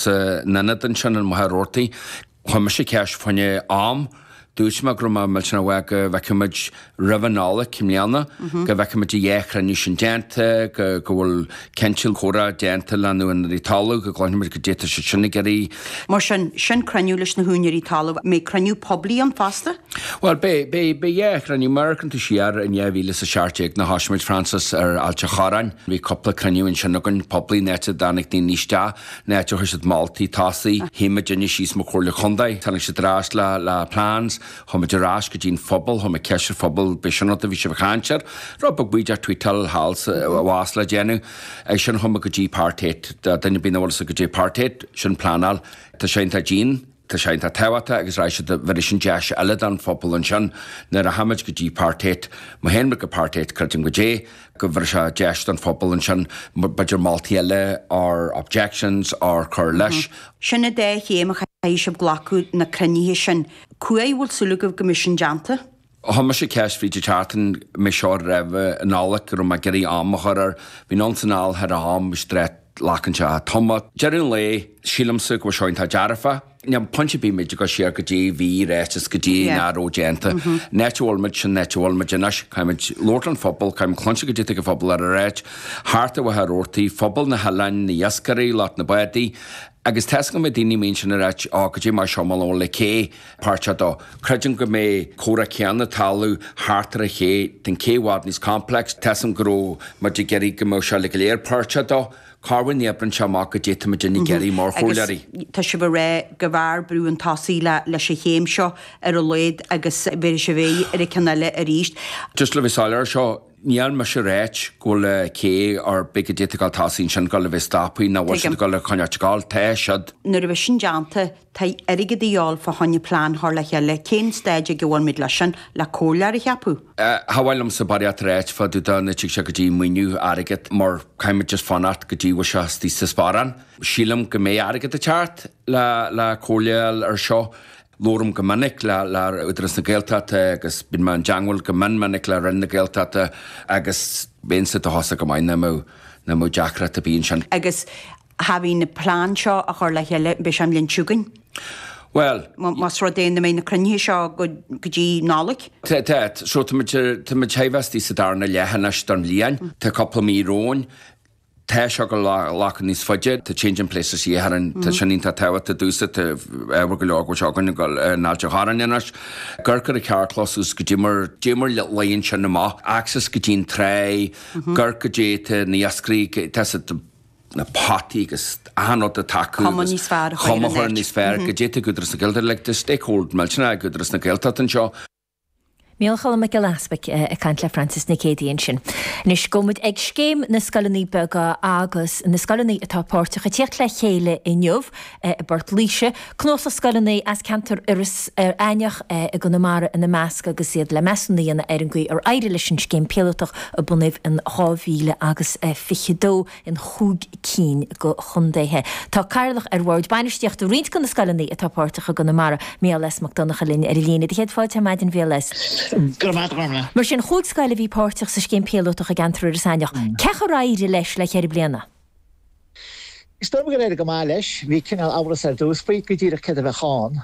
San ionad ansin i Machaire Rabhartaigh, chuir mise ceist faoin am. Dúirt mé go raibh mé millteanach uaidh go bhfeicfimid roimh an Nollaig i mbliana, go bhfeicfimid an dá chruinniú sin déanta, go bhfuil cineál comhrá déanta le na húinéirí talamh, go gcloisfimid caidé atá siad sin ag iarraidh. Mar sin, sin cruinniú leis na húinéirí talamh. An mbeidh cruinniú poiblí ann fosta? Bhuel, beidh, beidh, beidh dhá chruinniú. Má amharcann tú siar in 2017 nuair a thosaigh muid, Frances, ar Ailt an Chorráin. Bhí cúpla cruinniú ansin againn, poiblí, an áit a dtáinig daoine isteach. An áit ar chuir siad moltaí chun tosaigh. Shuigh muidinne síos mar Chomhairle Contae. Tháinig siad ar ais le le plans. Chuaigh muid ar ais go dtí an phobal. Chuir muid ceist ar an phobal, ab é sin an rud a bhí sibh ag caint air? Rud beag baoideach, tweakáil thall is abhus le déanamh. Ansin chuaigh muid go dtí Part 8. Do dhuine ar bith nach bhfuil a fhios acu caidé Part 8, sin pleanáil. Tá sé iontach dian. Tá sé iontach tábhachtach agus arís bheireann sin deis eile don phobal ansin nuair a thagaimid go dtí Part 8. Má théann muid go Part 8, creidim caidé go bheireann sé deis don phobal ansin b'fhéidir moltaí eile or objections or cur leis. Sin an dá chéim a chaithfidh sibh glacadh na cruinnithe sin. Cá huair a bhfuil súil agaibh go mbeidh sin déanta? Chuir mise ceist faoi, caidé, thart an mí seo roimh an Nollaig go raibh mé ag iarraidh am a chur air. Bhí ann san áil thar am, bhí straighleacán sé a' tumadh. Deireadh an lae, sílimse go bhfuil seo iontach dearfa. Níl pointe ar bith a bheith ag dul siar caidé a bhí ráite is caidé nach raibh déanta. An áit a bhfuil muid, sin an áit a bhfuil muid anois. Caithfimid labhairt leis an phobal, caithfimid cluinstin caidé atá an pobal ag ráit, thart ar Mhachaire Rabhartaigh, pobal na n-oileán, na hiascairí, lucht na mbádaí. Agus tá a fhios agam go mbeidh daoine a mbíonn sin ag ráit, á, go dtí mar seo, mo lón le cé. páirteach dó. Creidim go mbeidh comhrá céanna talamh thart ar an ché den cé i bhfad níos complex. Tá a fhios agam go raibh muid ag iarraidh go mbeadh seo uilig go léir páirteach dó. Cá bhfuil na oibreann seo amach caidé atá muidinne ag iarraidh mar chomhairleoirí? Tá sibh ag rá gurbh fhearr brú chun tosaigh le leis an chéim seo ar a laghad agus bhféadfadh sibh éirí ar an ceann eile arís. Just le bheith soiléir ar seo, níl mise ag ráit go bhfuil cé ár bith caidé atá ag dul chun tosaigh ansin ag dul a bheith stoptha nó nach bhfuil siad ag dul a choinneáilt ag dul. Tá siad. Nuair a bheidh sin déanta, Tá airgead a dhíobháil fá choinne plean a chur le chéile, cén stáid ag a bhfuil muid leis sin? Le comhairleoir a cheapadh? Cha mhaith liomsa barraíocht a ráit fá dtaobh dó nuair a thig seo go dtí maoiniú airgead mar caithfimid just fanacht go dtí go bhfuil sé istigh sa sparán. Sílim go mbeidh airgead ag teacht le le comhairleáil ar seo. Labhraim go minic le le Údarás na Gaeltachta agus bíonn mé in dteangmháil go mion minic le Roinn na Gaeltachta agus bheinnse dóchasach go maith nach mbeadh nach mbeadh deacracht ar bith ansin. Agus having na plean seo a chur le chéile beidh sé an bhliain seo chugainn. Bhuel. Más rud é nach mbeidh na cruinnithe seo go dtí Nollaig. Tá, tá. So tá muid, tá muid shaidhbheastaí sa darna leath anois don bhliain. Tá cúpla mí romhainn. Tá seo ag glacadh níos faide. Tá Changing Places Thír Earainn, tá sin iontach tábhachtach domhsa. Tá ábhar go leor go bhfuil seo againn in Ailt a' Chorráin anois. Gur, caidé, an carrchlós suas go dtí mar, dtí mar laí ansin amach. Access go dtí'n tráigh, gur, caidé, tá na hiascairí, tá siad, na potaí agus achan rud atá acu Cuma agus níos fearr a chur ar chuma an chur níos fhearr go dtí ag Údarás na Gaeltachta like the stakehold milse ná ag Údarás na Gaeltachta anseo. Micheál Choilm Mac Giolla Easbuic ag caint le Frances Nic Géadaigh ansin. Anois gabhfaidh muid ag scéim na scoileanna beaga agus na scoileanna atá páirteach ag tíocht le chéile inniu, i bPort Laoise, cnuasach scoileanna as ceantar Iorras Aintheach i gConamara ina measc, agus iad le measúnú a dhéanamh ar an gcaoi ar éirigh leis an scéim píolótach a bunaíodh in 2000 agus 22 in chúig cinn de chontaetha. Tá Cathaoirleach ar Bhord Bainistíochta roinnt de na scoileanna atá páirteach i gConamara, Micheál S. Mac Donnacha linn ar an líne. Do chéad fáilte ar maidin a Mhicheál S. Go raibh maith agat, a Ghormfhlaith. Mar sin, chúig scoil a bhí páirteach sa scéim píolótach i gceantar Iorras Aintheach. Cén chaoi ar éirigh leis le ceithre bliana? Is dóigh liom gur éirigh go maith leis. Bhí cineál amhras ar dtús faoi, go díreach céard a bheadh ann.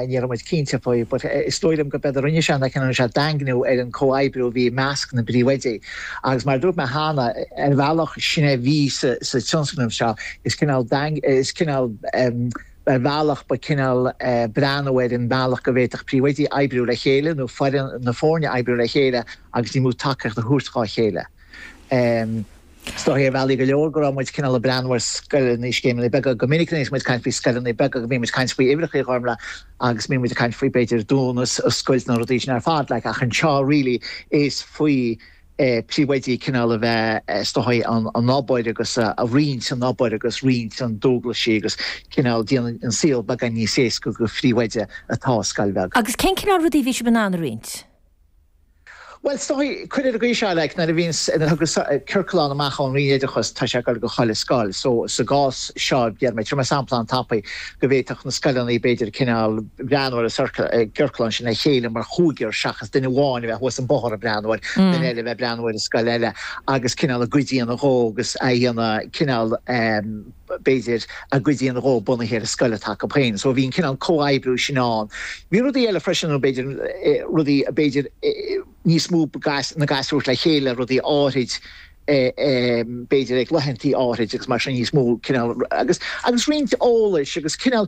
Ní raibh muid cinnte faoi, but is dóigh liom gurb éard a rinne sé ná cineál rinne sé daingniú ar an comhoibriú a bhí i measc na bpríomhoidí. Agus mar a dúirt mé cheana, ar bhealach sin é a bhí sa tionscnamh seo, is cineál daing, is cineál em, ar bhealach ba cineál eh breathnú ar an mbealach go bhféadfadh príomhoidí oibriú le chéile nó foireann na foirne oibriú le chéile agus níos mó tacaíocht a thabhairt dhá chéile. Em. Is dóigh ar bhealaí go leor go raibh muid cineál ag breathnú ar scoileanna, scéimeanna beaga. Go minic bhíonn muid ag caint faoi scoileanna beaga, go mbíonn muid ag caint faoi uimhreacha, a Ghormfhlaith, agus bíonn muid ag caint faoi, b'fhéidir, dúnadh is oscailt nó rudaí sin ar fad like ach anseo really is faoi príomhoidí cineál a bheith is dóigh an an obair agus a roinnt an obair agus roinnt an dualgaisí agus cineál déanann an saol beagán níos éasca do phríomhoide atá i scoil bheag. Agus cén cineál rudaí a bhí sibh in ann a roinnt? Bhuel, is dóigh, cuir i gcás, like, nuair a bhíonn, nuair a thagas ciorclán amach ón Roinn Oideachais, tá sé ag dul go chuile scoil. So, sa gcás seo, déarfaidh mé, tabharfaidh mé sampla an-tapaidh, go bhféadfadh na scoileanna, b'fhéidir, cineál breathnú ar an gciorclán sin le chéile mar chúigear seachas duine amháin a bheith thuas an bóthar ag breathnú air, duine eile a bheith ag breathnú air i scoil eile agus cineál a gcuid a dhéanamh dhó agus a dhéanamh cineál, eh, b'fhéidir, a gcuid a dhéanamh dhó bunaithe ar an scoil atá acu féin. So bhí an cineál comhoibriú sin ann. Bhí rudaí eile freisin ann, b'fhéidir, rudaí, b'fhéidir, níos mó na gasúir le chéile, rudaí áithrid, b'fhéidir, ag laethantaí áithrid agus mar sin, níos mó cineál, agus, agus roinnt eolais agus cineál,